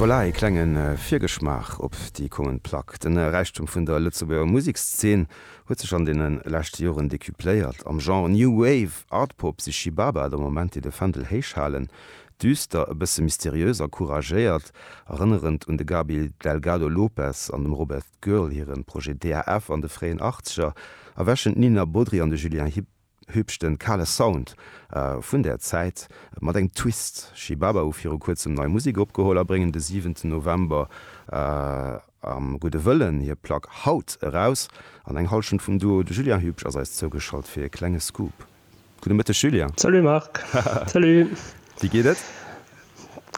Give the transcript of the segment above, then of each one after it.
Voilà, ee klenge Virgeschmaach op déi kommend Plack. Den Räichtum vun der Lëtzebuerger Musekszeen huet sech an deene leschte Joren decupléiert. Am Genre New Wave, Art-Pop si Shi Baba der Moment déi de Fändel héich halen. Düster, e bësse mysteriös a couragéiert, erënnerend un de Gaby Delgado Lopes an dem Robert Girl hire Projet DAF an de fréien Achtzeger, erwächen d'Nina Bodry an de Julien Hipp. Hübsch den kale Sound vun der Zäit mat engem Twist. Shibaba hu viru kuerzem nei Musek opgeholl a bréngen de siwenten November am Gudde Wëllen hir Plack Haut eraus. An eng Hallschent vum Duo. De Julien Hübsch ass eis zougeschalt fir e klenge Scoop. Gudde Mëtteg Julien. Salut Marc. Salut. Wéi geet et?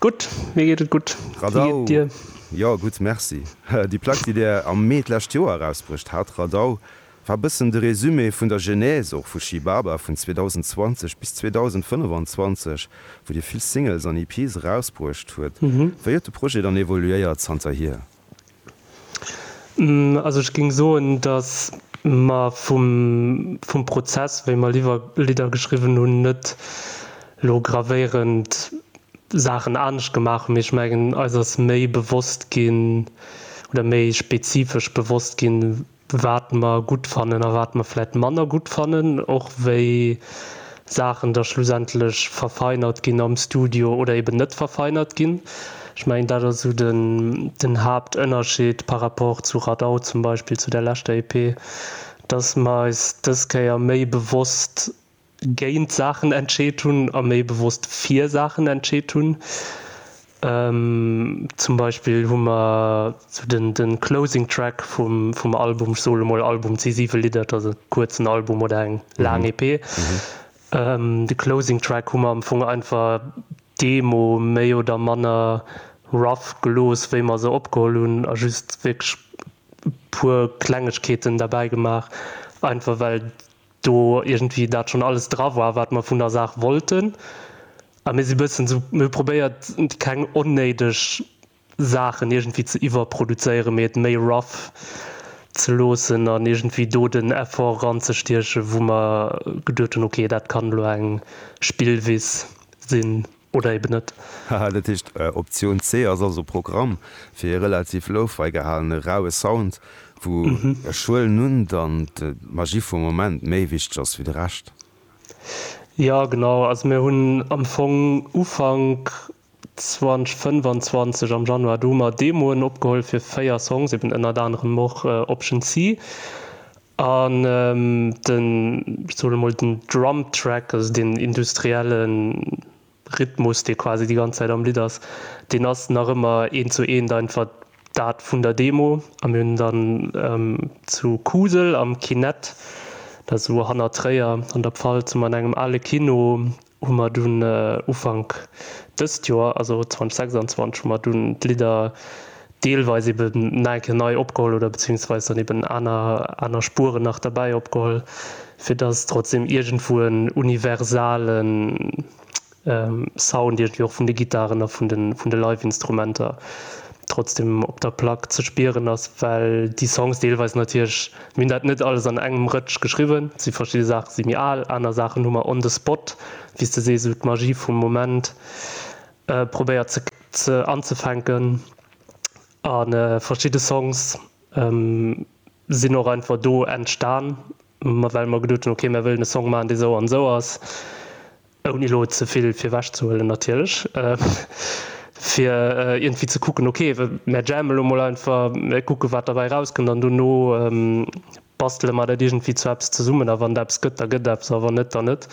Gutt, mir geet et gutt. Wéi geet et dir? Jo, gutt, merci. Déi Plack, déi Dir am Mee d'lescht Joer erausbruecht hat, Radau, War bëssen de Résumé vun der Genèse och vu She Baba vun 2020 bis 2025, wou Dir vill Singles an EPs erausbruecht huet. Wéi huet de Projet dann evoluéiert zanterhier? Also ech géing soen, dass mer vum vum Prozess, wéi mer Liwer Lidder geschriwwen hunn, net elo gravéierend Saachen anescht gemaach hunn, mee ech mengen, eis ass méi bewosst ginn oder méi spezifesch bewosst ginn, wat mer gutt fannen a wat mer vläicht manner gutt fannen, och wéi Saachen da schlussendlech verfeinert ginn am Studio oder eben net verfeinert ginn. Ech mengen, dat ass esou den Haaptënnerscheed par rapport zu Radau zum Beispill, zu der leschter EP, dass mer eis dës Kéier méi bewosst géint Saachen entscheet hunn a méi bewosst fir Saachen entscheet hunn. Zum Beispill hu mer de Closing Track vum Album, ech sot emol Album, et si siwe Lidder, et ass e kuerzen Album oder eng laang EP, de Closing Track hu mer am Fong einfach d'Demo méi oder manner rough gelooss, wéi mer se opgeholl hunn a just wierklech e puer Klengegkeeten derbäi gemaach, einfach well do iergendwéi dat schonn alles dra war, wat mer vun der Saach wollten, a mir si bëssen esou, mir hu probéiert, keng onnéideg Saachen iergendwéi ze iwwerproduzéieren, mee et méi rough ze loossen an iergendwéi do den Effort eranzestiechen, wou mer geduet hunn, okay, dat kann elo eng Spillwiss sinn. oder eben net. Haha, dat heescht Optioun C ass also Programm fir ee relativ Lo-Fi gehalene raue Sound, wou ech huelen un dann d'Magie vum Moment méi wichteg ass wéi de Rescht? Jo genau, also mir hunn am Fong Ufank 2025 am Januar du mar Demoen opgeholl fir 4 Songs, eben ënnert anerem och Option C, An den, ech soen emol, den Drum Track, also deen industrielle Rhythmus, dee quasi déi ganz Zäit am Lidd ass, deen ass nach ëmmer eent zu eent einfach dat vun der Demo. A mir hunn dann zu Kusel am Kinett, dat ass esou hanner Tréier an der Pfalz, hu mer an engem ale Kino hu mer dunn Ufank dëst Joer, also 2026, hu mer dunn d'Lidder deelweis ebe nach eng Kéier nei opgeholl oder beziehungsweis dann eben aner, aner Spueren nach derbäi opgeholl, fir dass et trotzdem iergendwou en universale Sound iergendwéi och vun de Gittaren a vun de, vun de Live-Instrumenter trotzdem op der Plack ze spieren ass, well déi Songs deelweis natierlech. Mir hunn dat net alles an engem Rëtsch geschriwwen. Et si verschidde Saache si méi al, aner Saachen hu mer on the spot, wéi s de sees, esou d'Magie vum Moment probéiert ze ze anzefänken. A verschidde Songs sinn och einfach do entstan, well mer geduet hunn, ok, mir wëllen e Song maachen, dee sou an esou ass. ouni elo ze vill virwech ze huelen natierlech, fir iergendwéi ze kucken, ok, mär jammen elo mol einfach, mär kucke wat derbäi erauskënnt an dono bastele mer dat iergendwéi zu eppes zesummen a wann et eppes gëtt, da gëtt et eppes a wann net, da net.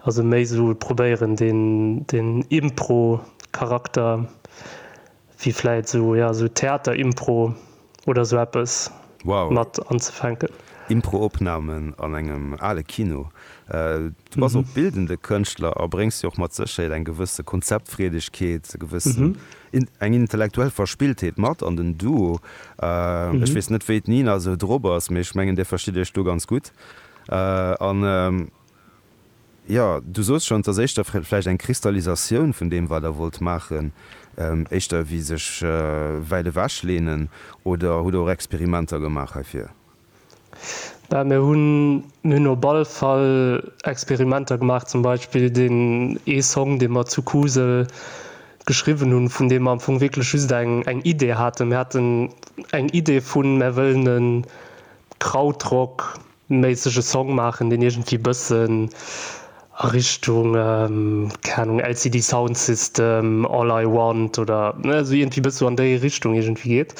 Also méi esou probéieren deen Impro-Charakter. wéi vläit esou, jo, esou Theaterimpro oder esou eppes Wow. mat anzefänken. Improopnamen an engem ale Kino. Du bass och bildende Kënschtler a bréngs jo och mat Sécherheet eng gewësse Konzeptfreedegkeet, e gewëssen, eng intellektuell Verspilltheet mat an den Duo. Ech weess net, wéi d'Nina esou drop ass, mee ech mengen, Dir verstitt Iech do ganz gutt. An Jo, du soos schonns, ass éischter vläicht eng Kristallisatioun vun deem, wat Der wollt maachen, éischter wéi sech wäit ewech leenen. Oder hutt Der och Experimenter gemaach heifir? Bah, mir hunn, mir hunn op alle Fall Experimenter gemaach. Zum Beispill deen ee Song, dee mer zu Kusel geschriwwen hunn, vun deem mer am Fong wierklech just eng Idee haten. Mir haten eng Idee vun, Mär wëllen e Krautrock Méissege Song maachen, deen iergendwéi bëssen a Richtung, keng Ahnung, LCD Sound System, All I Want oder esou iergendwéi bëssen esou an déi Richtung iergendwéi geet.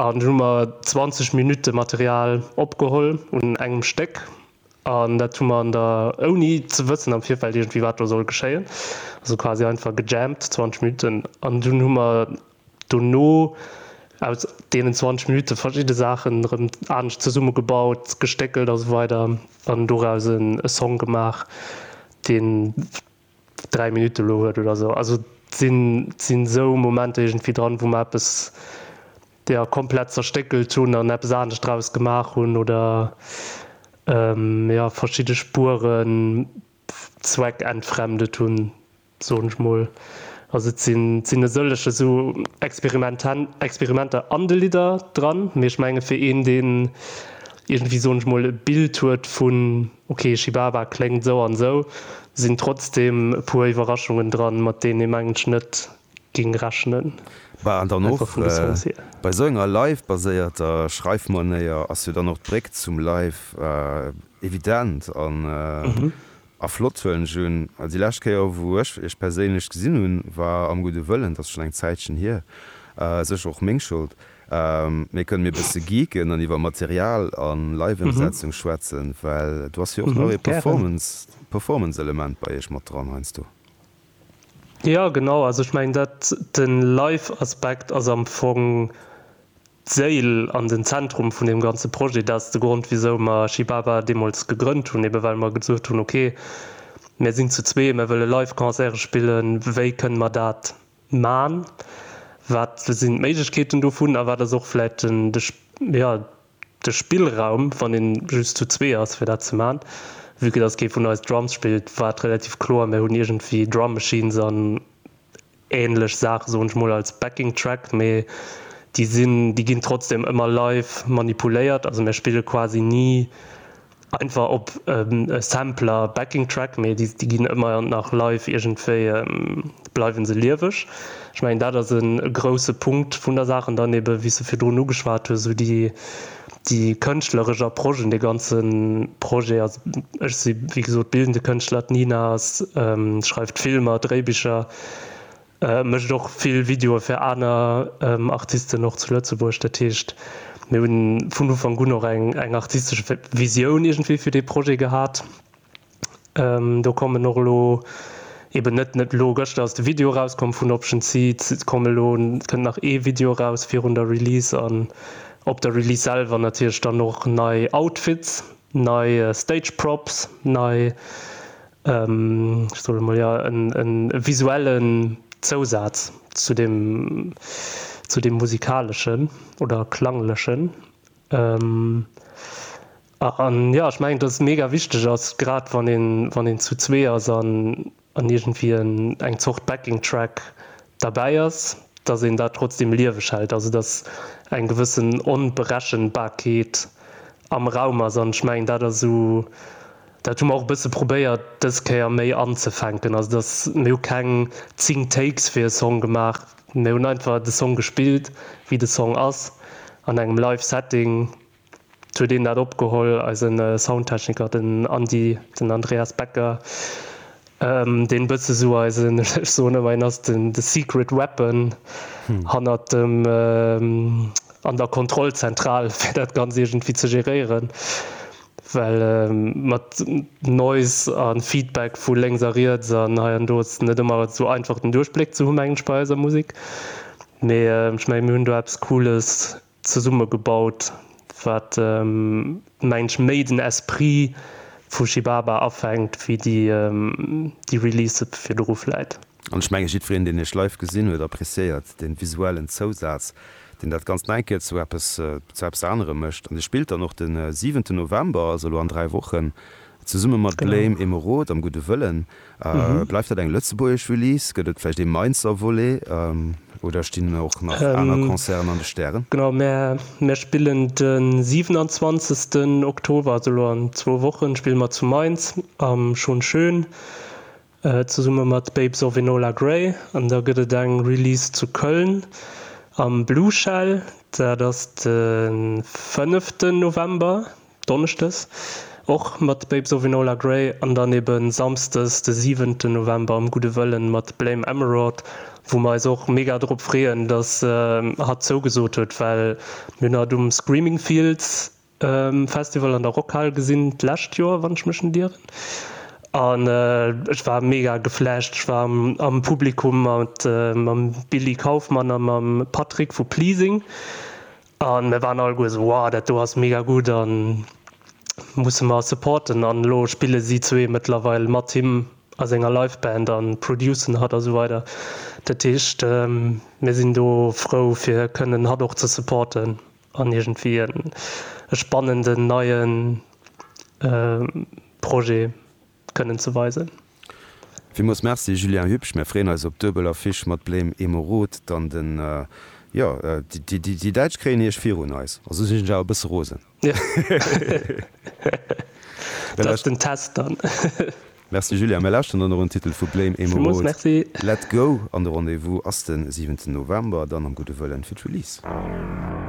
An dunn hu mer 20 Minutte Material opgeholl un engem Stéck an dat hu mer an der, ouni ze wëssen am Virfeld iergendwéi wat do soll geschéien, also quasi einfach gejammt 20 Minutten. An dunn hu mer dono aus deenen 20 Minutte verschidde Saachen erëm anescht zesummegebaut, gestéckelt a sou weider an doraus e Song gemaach, deen 3 Minutte elo huet oder sou. Also et sinn esou Momenter iergendwéi dran, wou mer eppes, jo, komplett zerstéckelt hunn an eppes anescht draus gemaach hunn oder, jo, verschidde Spueren zweckentfremdet hunn, soen ech mol. Also et sinn e sëllege sou Experimenter an de Lidder dran, mee ech menge fir een deen iergendwéi soen ech mol e Bild huet vun ok Shibaba kléngt sou an sou, sinn trotzdem e puer Iwwerraschungen dran mat deenen ee mengt net géing rechnen. Bah an dann och bei sou enger live baséierter Schreifmanéier ass jo dann och d'Bréck zum Live evident an A flott Zuelen June. Déi lescht Kéier wou ech iech perséinlech gesinn hunn war am gudde Wëllen, dat ass schonn eng Zäitchen hier, sécher och meng Schold, mee kënne mir e bësse geeken an iwwer Material a Live-Emsetzung schwätzen, well do ass jo och nach ee Performance-Element bei iech mat dran heiansdo? Jo genau, also ech mengen dat den live Aspekt ass am Fong d'Séil an den Zentrum vun deem ganze Projet. Dat ass de Grond wisou mer Shibaba deemools gegrënnt hunn, eben well mer gesot hunn ok mär sinn zu zwee, mär wëlle live Concerte spillen, wéi kënne mer dat man, wat sinn d'Méiglechkeeten dovun a wat ass och vläicht den jo de Spillraum, wann een just zu zwee ass fir dat ze man, vue que dass kee vun eis Drums spillt, war et relativ kloer, mir hunn iergendwéi Drum Machines an ähnlech Saachen, soen ech mol, als Backing Track, mee déi sinn, déi ginn trotzdem ëmmer live manipuléiert, also mir spille quasi ni einfach op Sampler, Backing Track, mee déi ginn ëmmer nach live, iergendwéi bleiwe se lieweg. Ech mengen dat ass e grousse Punkt vun der Saach. An dann ebe wéi s de virdrun ugeschwat hues, esou déi déi kënschtleresch Approche un de ganze Projet. Also ech si wéi gesot bildende Kënschtler, d'Nina ass schreift Filmer, Dréibicher. Mécht och vill Videoe fir aner Artisten, och zu Lëtzebuerg. Dat heescht, mir hu vun Ufank un och eng artistesch Visioun iergendwéi fir dee Projet gehat. Do kommen och elo eeben net, net elo, gëschter ass de Video erauskomm vun Option C, et komm elo, et kënnt nach ee Video eraus virun der Release an op der Release selwer natierlech dann och nei Outfits, nei Stage Props, nei ech soen emol, jo, e visuellen Zousaz zu deem, zu deem musikaleschen oder klanglechen. An jo, ech mengen, dass et mega wichteg ass, grad wann een, wann een zu zwee ass an an iergendwéi en eng Zort Backing Track derbäi ass, dass een dat trotzdeem lieweg hält, also dass eng gewëssen Onberechenbarkeet am Raum ass. An ech mengen, dat ass esou. Dat hu mer och e bësse probéiert dës Kéier méi anzefänken. Also dass, mir hu keng 10 Takes fir e Song gemaach, mir hunn einfach de Song gespillt, wéi de Song ass, an engem live Setting. Et huet een dat opgeholl, eisen Soundtechniker, den Andi, den Andreas Becker. Deen bësse sou eisen, ech soen ëmmer hien ass den the secret weapon hannert dem an der Kontrollzentral fir dat ganz iergendwéi ze geréieren, well mat Noise a Feedback vu lénks a riets an hei an do ass et net ëmmer sou einfach den Duerchbléck ze hu mengen ech bei eiser Musek, mee ech mengen mir hunn do eppes Cooles zesumme gebaut, wat mengt méi den Esprit vu Shibaba afänkt wéi déi Release virdru vläit. An ech menge jiddwereen deen iech live gesinn huet appreciéiert den visuellen Zousaz deen dat ganzt nach eng Kéier zu eppes zu eppes anerem mécht. An dir spillt dann och den siwenten November, also elo an 3 Wochen, zesumme mat Blame Emeraude am Gudde Wëllen. Bleift dat eng lëtzebuergesch Release? Gëtt et vläicht ee Mainzer Volet? Oder stinn och nach aner Concerten an de Stären? Genau, mär spillen de 27 Oktober, also elo an zwou Wochen, spille mer zu Mainz am Schon Schön zesumme mat Babes of Enola Grey. An da gëtt et eng Release zu Köln am Blue Shell, dat ass de 5 November. Donneschdes och mat Babes of Enola Grey an dann ebe Samsdes de 7 November am Gudde Wëllen mat Blame Emerald, wou mer eis och mega drop freeën, dass hatt zougesot huet, well mir hunn hatt um Screaming Fields Festival an der Rockhal gesinn d'lescht Joer, wann ech mech net ieren, an ech war mega geflasht. Ech war am Publikum mat mam Billy Kaufmann a mam Patrick vu Pleasing A mir waren alleguer esou, Wow, dat do ass mega gutt a musse mer supporten. An elo spille si zwee mëttlerweil mat him a senger Live-Band a producen hatt a sou weider. Dat heescht, mir sinn do frou, fir kënnen hatt och ze supporten an iergendwéi e spannenden neie Projet. kënnen ze weisen. Villmools Merci Julien Hübsch, mär freeën eis op duebel Affiche mat Blame Emeraude dann den jo déi Däitsch kréien Iech virun eis, also sinn ech awer e bësse rosen. Dat ass den Test dann. Merci Julien, mär lauschteren dann och en Titel vu Blame Emeraude, Let Go an de Rendez-vous ass den 7 November dann am Gudde Wëllen fir d'Release.